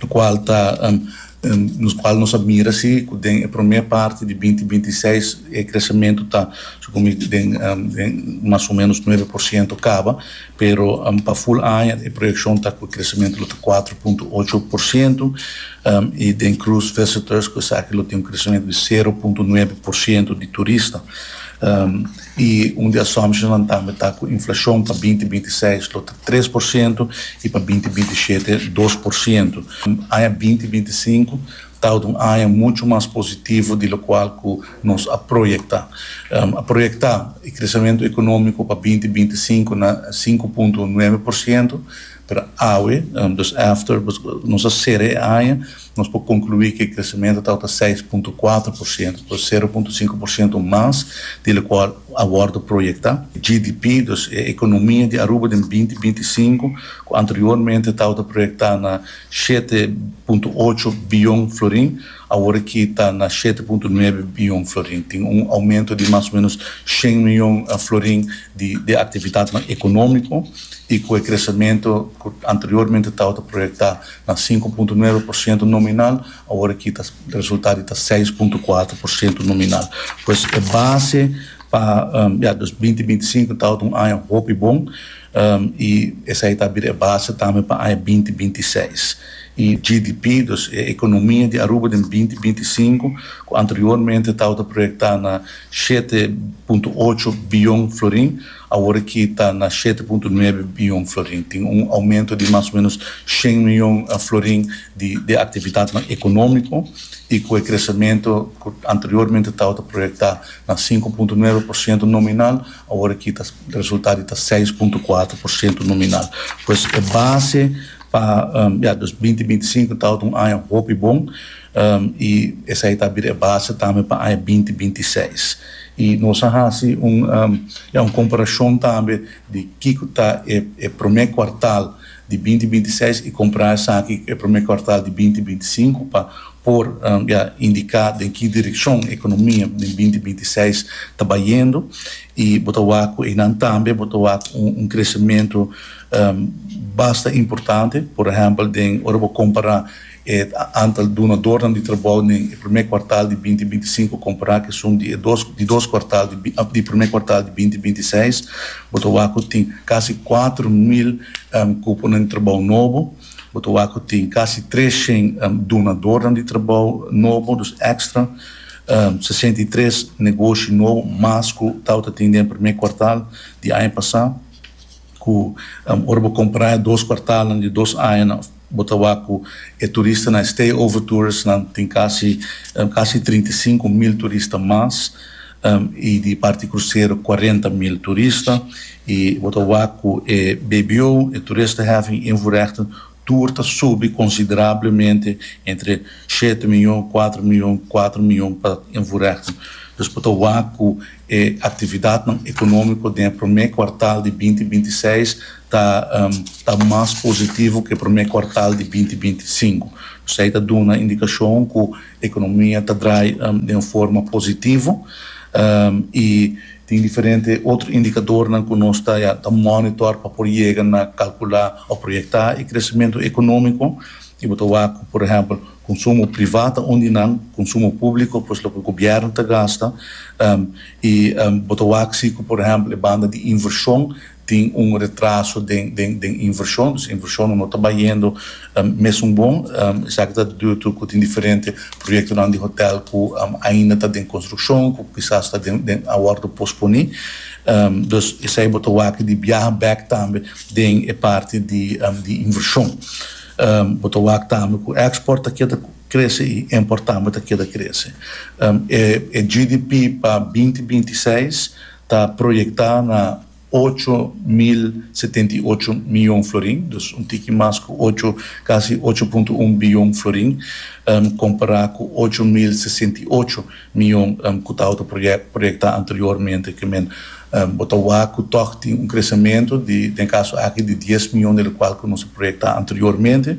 lokual ta nos kual nos a mira si ku den e promé parti di binti binti seis e kresementu ta supondo den den mas o menos nuebe por siento kaba pero pa ful aña e proyekshon ta ku e kresementu lo ta kuater punto ocho por siento i den krus visitors ku esaki lo tin un kresementu di sero punto nuebe por siento di turista. I un di assumptionsnan tambe ta ku inflashon pa binti binti seis lo ta tres por sientu i pa binti binti shete dos por sientu. Aña binti binti sinku ta tabata un aña muchu mas positivo di lokual ku nos a proyektá. A proyektá e kresamentu ekonómiko pa binti binti sinku na sinku punto nuebe por sientu. Pero awe, dus after, nos a sera e aña, nos por conclui cu e crecemento tabata seis punto cuatro por ciento, dus sero punto cinco por ciento mas di locual a wordo proyecta. GDP, dus e economia di Aruba den binti binti i sinku, cu anteriormente tabata proyecta na shete punto ocho biyon florin, Awor ki ta na shete punto nuebe biyon florin, tin un oumento di mas o menos shen miyon florin di e aktividatnan ekonómiko i ku e kresementu ku anteriormente tabata proyektá na sinku punto nuebe por siento nominal, awor ki ta resultá di ta seis punto kuater por siento nominal. Pues e base pa ya dos binti binti i sinku tabata un aña hopi bon i esei ta bira e base tambe pa aña binti binti i seis. e GDP, dus e economia di Aruba den binti binti sinku, cu anteriormente tawata proyecta na shete punto ocho biyon florin, awor aki ta na shete punto nuebe biyon florin. Tin un aumento di mas o menos shen miyon florin di di actividadnan economico, y cu e crecemento cu anteriormente tawata proyecta na sinku punto nuebe por ciento nominal, awor aki ta resulta di ta seis punto cuatro por ciento nominal. Pues e base Pa ya dos binti binti sinku ta un aña hopi bon i esei ta bira e base tambe pa aña binti binti seis. I nos a hasi un ya un komparashon tambe di kiko ta e e promé kuartal di binti binti seis i kompará esaki ku e promé kuartal di binti binti sinku pa por ya indiká den ki direkshon e ekonomia den binti binti seis ta bayendu i bo ta wak ku einan tambe bo ta wak un kresementu basta importante, por ehèmpel den ora bo kompará e antal dunadornan di trabou den e primé kuartal di binti binti sinku kompará ku e sum di e dos di dos kuartal di di e primé kuartal di binti binti seis, bo ta wak ku tin kasi kuater mil kuponan di trabou nobo, bo ta wak ku tin kasi tres shen dunadornan di trabou nobo, dus èkstra, sesenta i tres negoshi nobo mas ku tabata tin den e primé kuartal di aña pasá. cu ora bo compra e dos cuartalnan di dos añanan bo ta wak cu e turistanan, e stay over touristanan tin casi casi trinta i sinku mil turista mas y di parti crucero cuarenta mil turista y bo ta wak cu e bbo, e toeristenheffing invoerrechten, tur ta subi considerablemente entre shete miyon, cuatro miyon, cuatro miyon pa Inforechten. Nos por ta wak cu e actividadnan economico den e prome cuartal di binti binti seis ta ta mas positivo cu e prome cuartal di binti binti sinku. Esey ta duna indicacion cu economia ta draai den un forma positivo y. Tin diferente otro indicadornan cu nos ta ya ta monitor pa por yega na calcula o proyecta e crecemento economico. Y bo ta wak cu, por ehempel, consumo priva ta un di nan, consumo publico pues loke gobierno ta gasta. Y bo ta wak si cu, por ehempel, e banda di inversion tin un retraso den den den invershon, dus invershonnan no ta bayendo mesun bon, esaki ta dibido tur ku tin diferente proyektonan di hotèl ku ainda ta den konstrukshon, ku kisas ta den den a wòrdu posponí. Dus esei bo ta wak di biaha bèk tambe den e parti di di invershon. Bo ta wak tambe ku èkspòrt ta keda krese i impòrt tambe ta keda krese. E e GDP pa binti binti seis ta proyectá na ocho mil setenta i ocho miyon florin, dus un tiki mas ku ocho, kasi ocho punto un biyon florin, kompará ku ocho mil sesenta i ocho miyon ku tabata proyectá anteriormente. Ke men bo ta wak ku tòg tin un kresamentu di, den kaso aki, di dies miyon, del kual ku nos a proyectá anteriormente.